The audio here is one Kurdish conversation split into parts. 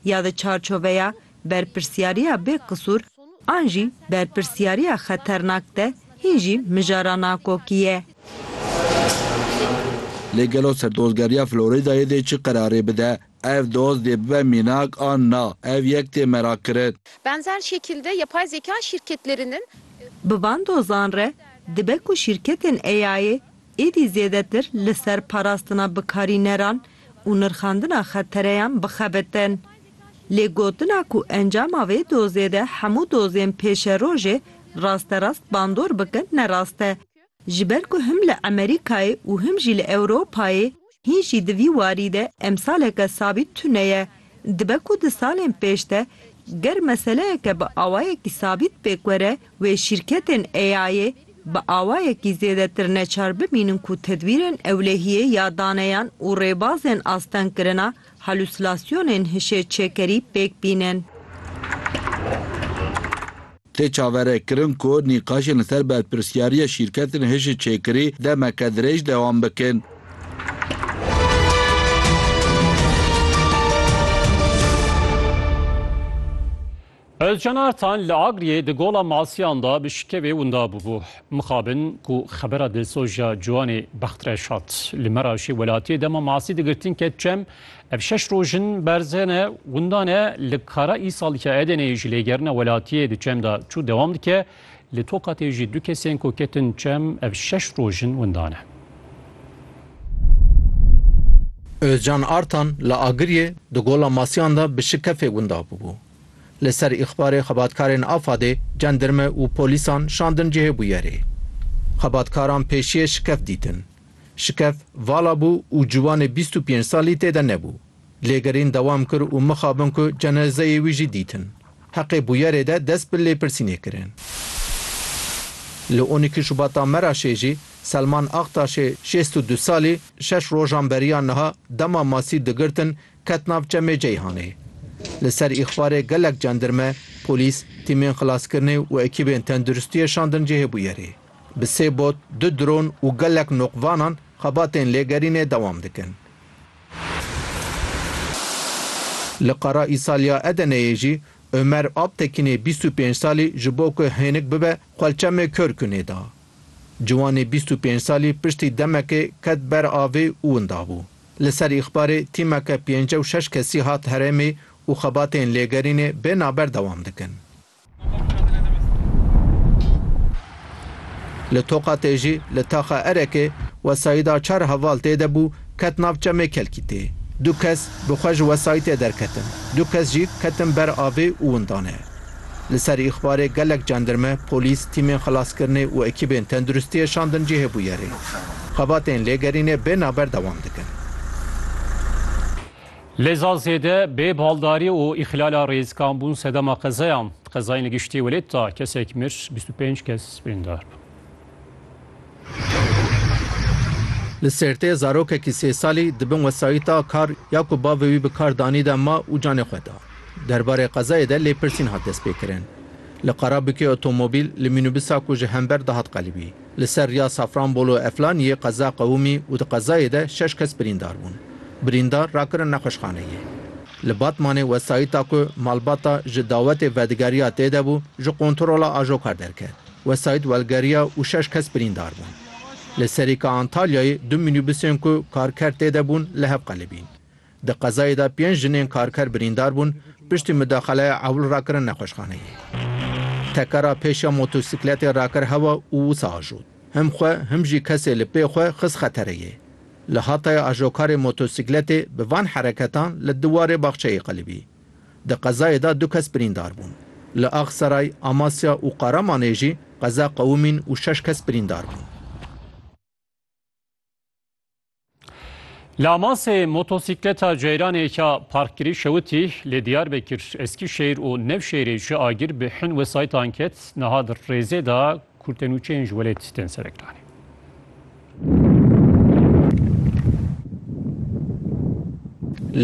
ya di çarçoveya berpirsyariya bêqisûr an jî berpirsyariya xeternak de hîn jî mijara nakokî ye. Lê gelo ser dozgeriya Floridayê dê çi qerarê bide? Ev doz dê bibe mînak an na? Ev yek tê merakkirin. Benzer şekilde yapay zeka şirketlerinin. Bi van dozan re dibe ku şîrketên AI'ê êdî zêdetir li ser parastina bikarîneran û nirxandina xettereyan bixebitin. Lê gotina ku encama vê dozê de hemû dozên pêşerojê rasterast bandor bikin ne rast e. Ji ber ku him li Emerîkayê û him jî li Ewropayê hîn jî di vî warî de emsaleke sabît tune ye. Dibe ku di salên pêş de ger meseleyeke bi awayekî sabît pêk were wê şîrketên AI'ê bi awayekî zêdetir neçar bimînin ku tedbîrên ewlehiyê ya daneyan û rêbazên astengkirina halûsilasyonên hişê çêkerî pêk bînin. Tê çaverekirin ku nîqaşên li ser berpirsyariya şîrketên hişê çêkirî demeke dirêj dewam bikin. Ozcan Artan li Agriyê di Gola Masiyan de bi şikevê winda bûbû. Mixabin ku xebera dilsoja ciwanê bextreş hat. Li Meraşê welatiyê dema masî digirtin ket çem, Ev şeş roj in berze ne, winda ne li kara îsal ke Edeneyê ji lêgerina welatiyê di çem de çû dewam dike. Li Tokatê jî du kesên ku ketin çem ev şeş roj in winda ne. Ozcan Artan li Agiriyê di Gola Masiyan de bi şikefê winda bûbû. Li ser îxbarê xebatkarên Afadê cendirme û polîsan şandin cihê bûyerê. Xebatkaran pêşiyê şikef dîtin. Şikef vala bû û ciwanê bîst û pênc salî tê de nebû. Lêgerîn dewam kir û mixabin ku cenezeyê wî jî dîtin. Heqê bûyerê de dest bi lêpirsînê kirin. Li on îkî Şubata Meraşê jî Selman Aktaşê şêst û du salî şeş rojan beriya niha dema masî digirtin ket nav çemê Ceyhanê. Li ser îxbarê gelek cendirme, polîs, tîmên xilaskirinê û ekîbên tenduristiyê şandin cihê bûyerê. Bi sê bot, du dron û gelek noqvanan xebatên lêgerînê dewam dikin. Li Qara Îsaliya Edeneyê jî Ömer Alptekinê bîst û pênc salî ji bo ku hênik bibe xwelçemê kör kunê da. Ciwanê bîst û pênc salî piştî demekê ket ber avê û winda bû. Li ser îxbarê tîmeke pêncî û şeş kesî hat herêmê û xebatên lêgerînê bê naber dewam dikin. Li Toqa Têjî li Taxa Erekê wesayîda çar heval tê de bû ket nav çemê Kelkîtê. Du kes bi xwe ji wesayîtê derketin, du kes jî ketin ber avê û windane. Li ser îxbarê gelek cendirme, polîs, tîmên xilaskirinê û ekîbên tenduristiyê şandin cihê bûyerê. Xebatên lêgerînê bê navber dewam dikin. Lê za zêde bê baldarî û îxlala rêzikan bûn sedema qezeyan. Qezayên giştî welêt da, kesek mir, bîst û pênc kes birîndar bûn. Li Sêrtê zarokekî sê salî di bin wesayîta kar ya ku bavê wî bi kar danî de ma û canê xwe da. Derbarê qezayê de lêpirsîn hat destpêkirin. Li Qarabikê otomobîl li mînûbisa ku ji hember dihat qelibî. Li ser riya Safranbolu Eflaniyê qeza qewimî û di qezayê de şeş kes birîndar bûn. Birîndar rakirin nexweşxaneyê. Li Batmanê wesayîta ku malbata ji dawetê vedigeriya tê de bû ji qontrola ajokar derket. Wesayît welgeriya û şeş kes birîndar bûn. Li Serîka Antalyayê du mînîbusên ku karker tê de bûn li hev qelibîn. Di qezayê de pênc jinên karker birîndar bûn piştî mudaxaleya ewil rakirin nexweşxaneyê. Tekera pêş ya motosîkletê rakir hewa û wisa ajot. Him xwe him jî kesê li pê xwe xist xetereyê. Li Hatayê ajokarê motosîkletê bi van hereketan li diwarê baxçeyê qilibî. Di qezayê de du kes birîndar bûn. Li Axseray, Amasya û Qaramanê jî qeza qewimîn û şeş kes birîndar bûn. Lamasê motosikleta ceyranê ka parkkirî şewitî lê Diyarbekir, Eskîşehîr û Nevşehîrê ji agir bi hin wesayîtan ket, niha di rêzê de kurtenûçeyên ji welêt tên serekiranîn.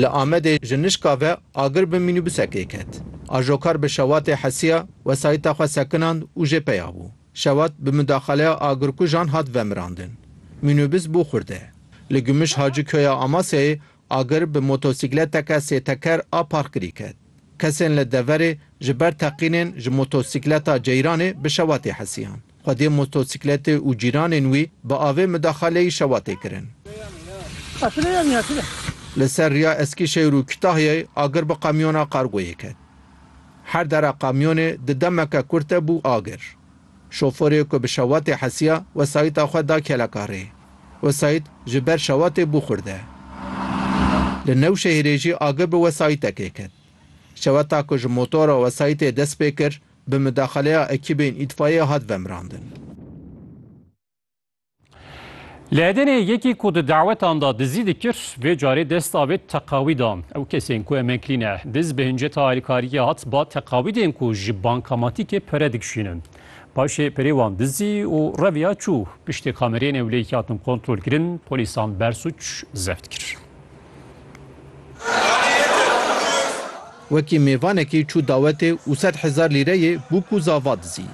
Li Amedê ji nişka ve agir bi mînîbusekê ket. Ajokar bi şewatê hesiya wesayîta xwe sekinand û jê peya bû. Şewat bi mudaxaleya agirkujan hat vemirandin. Mînobîs bû xurde. Li Gumuş Haci Köya Amasyayê agir bi motosîkleteke sê teker a parkirî ket. Kesên li deverê ji ber teqînên ji motosîkleta Ceyranê bi Şewatê hesiyan. Xwedê motosîkletê û cîranên wî bi avê mudaxaleyî Şewatê kirin. Li ser riya Eskîşehir û Kitahyayê agir bi qemyona kargoyê ket. Her dera kamyonê di demeke kurt de bû agir. Şoforê ku bi şewatê hesiya wesayîta xwe da keleka rê. Wesayît ji ber şewatê bû xurde. Li Newşehirê jî agir bi wesayîtekê ket. Şewata ku ji motora wesayîtê dest pê kir, bi midaxaleya ekîbên îtfayê hat vemirandin. Li Edenê yekî ku di dawetan da dizî dikir vê carê dest da vê teqawî da. Ew kesên ku em kirîne diz bi hinceta alîkariyê hat ba teqawîdên ku ji bankamatîkê pere dikişînin. Paşê perê wan dizî û reviya çû piştê kamerên ewlehî ke hatin kontrolkirin polîsan bersûc zeft kir. Wekî mêvanekî çû dawetê û sed hezar lîreyê bûk û zava dizî.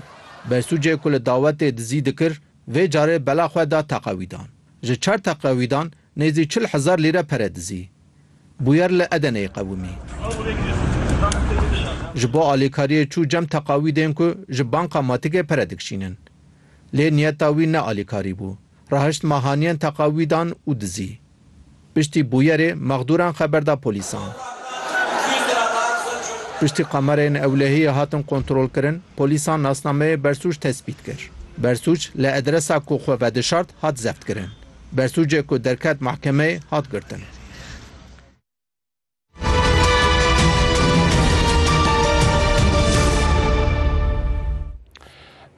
Bersûcê ku li dawetê dizî dikir Vê carê bela xwe da teqewîdan. Ji çar teqewîdan nêzî çil hezar lîre pere dizî. Bûyer li Edeneyê qewimî. Ji bo alîkariyê çû cem teqawîdên ku ji banka Matigê pere dikşînin. Lê niyeta wî ne alîkarî bû. Rahişt ma haniyên teqawîdan û dizî. Piştî bûyerê mexdûran xeber da polîsan. Piştî kamerayên ewlehiyê hatin kontrolkirin, polîsan nasnameyê bersûc tespît kir. Bersûc li edresa ku xwe vedişart hat zeftkirin. Bersûcê ku derket mehkemeyê hat girtin.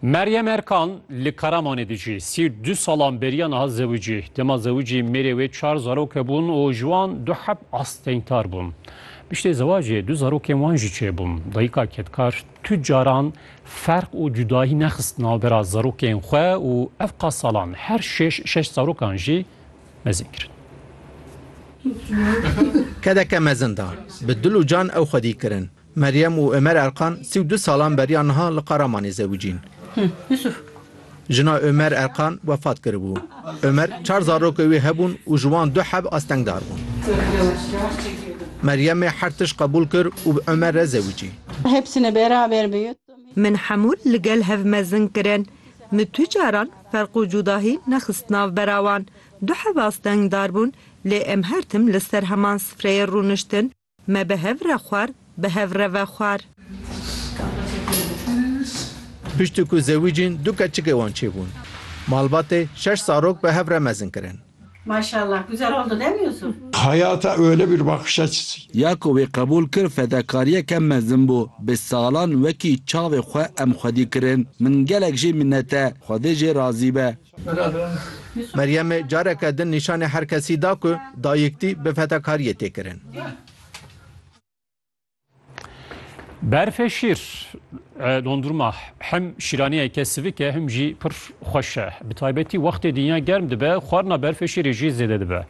Meryem Erkan li Karamanê dijî. Sî û du salan beriya niha zewicî. Dema zewicî mêrê wê çar zarok hebûn û ji wan du heb astengtar bûn. Piştê zewacê du zarokên wan jî çêbûn. Dayika kedkar tu caran ferq û cudayî nexist navbera zarokên xwe û ev qas salan her şêş şeş zarokan jî mezin kirin. Kedeke mezin da. Bi dil û can ew xwedî kirin. Meryem û Omer Erkan sî û du salan beriya niha li Qaramanê zewicîn. Jina Omer Erkan wefat kiribû. Omer çar zarokê wê hebûn û ji wan du heb astengdar bûn. Meryemê her tişt qebûl kir û bi Omer re zewicî. Min hemû li gel hev mezin kirin. Min tu caran Ferq û cudahî nexist nav bera wan. Du hevas dengdar bûn, lê em her tim li ser heman sifreyê rûniştin, me bi hev re xwar, bi hev re vexwar. Piştî ku zewicîn du keçikê wan çêbûn. Malbatê şeş zarok bi hev re mezin kirin. Maşallah güzel oldu değil mi Yusuf? Hayata öyle bir bakış açısı. Ya ku wê qebûl kir fedakariyeke mezin bû. Bi salan wekî çavê xwe em xwedî kirin. Min gelek jê minnet e. Xwedê jê razî be. Meryemê careke din nîşanê herkesî da ku dayîktî bi fedakariyê tê kirin. Berfê şîr dondurma hem şîraniyeke sivik e hem jî pir xweş e. Bi taybetî wextê dinya germ dibe, xwarina berfê şîrê jî zêde dibe.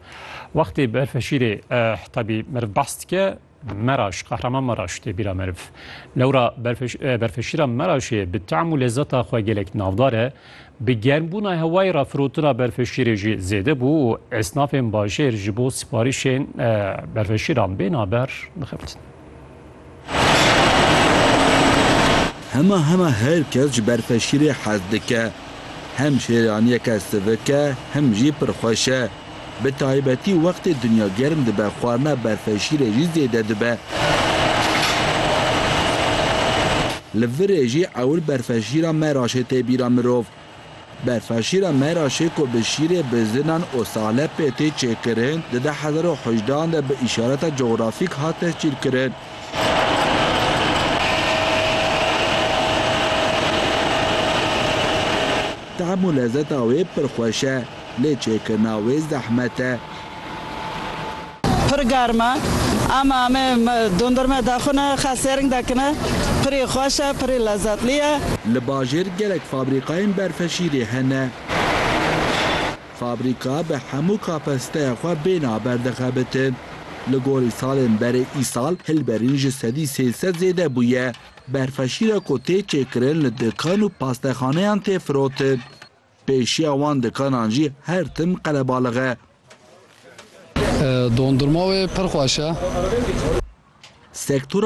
Wextê berfê şîrê tabî meriv behs dike meraş, qehraman meraş tê bîra meriv. Lewra berfê şîra meraşê bi tam û lezeta xwe gelek navdar e. Bi germbûna hewayê re firotina berfşîrê jî zêde bû û esnafên bajêr ji bo siparîşên berfşîran bêna ber dixebtin. Hema hema her kes ji berfşîrê hez dike. Hem şêraniyeke sivik e hem jî pir xweş e. Bi taybetî wextê dinya germ dibe xwarina berfê şîrê jî zêde dibe. Li virê jî ewil berfê şîra meraşê tê bîra mirov. Berfa şîra meraşê ku bi şîrê bizinan û sahlepê tê çêkirin di deh hezar û hejde an de bi îşareta cografîk hat tescîlkirin. Tehm û lezeta wê pir xweş e. Lê çêkirina wê zehmet e. Pir germ e. Em amê dondurme daxwine, xes sêring dakine. Pirî xweş e, pirî lezetlî ye. Li bajêr gelek fabrîkayên berfeşîrê hene. Fabrîka bi hemû kapasîteya xwe bê naber dixebitin. Li gorî salên berê îsal hilberîn ji sedî sê sed zêde bûye. Berfeşîra ku tê çêkirin li dikan û pastexaneyan tê firotin. Pêşiya wan dikanan jî her tim qelebalix e. Dondurma wê pir xweş e. Sektora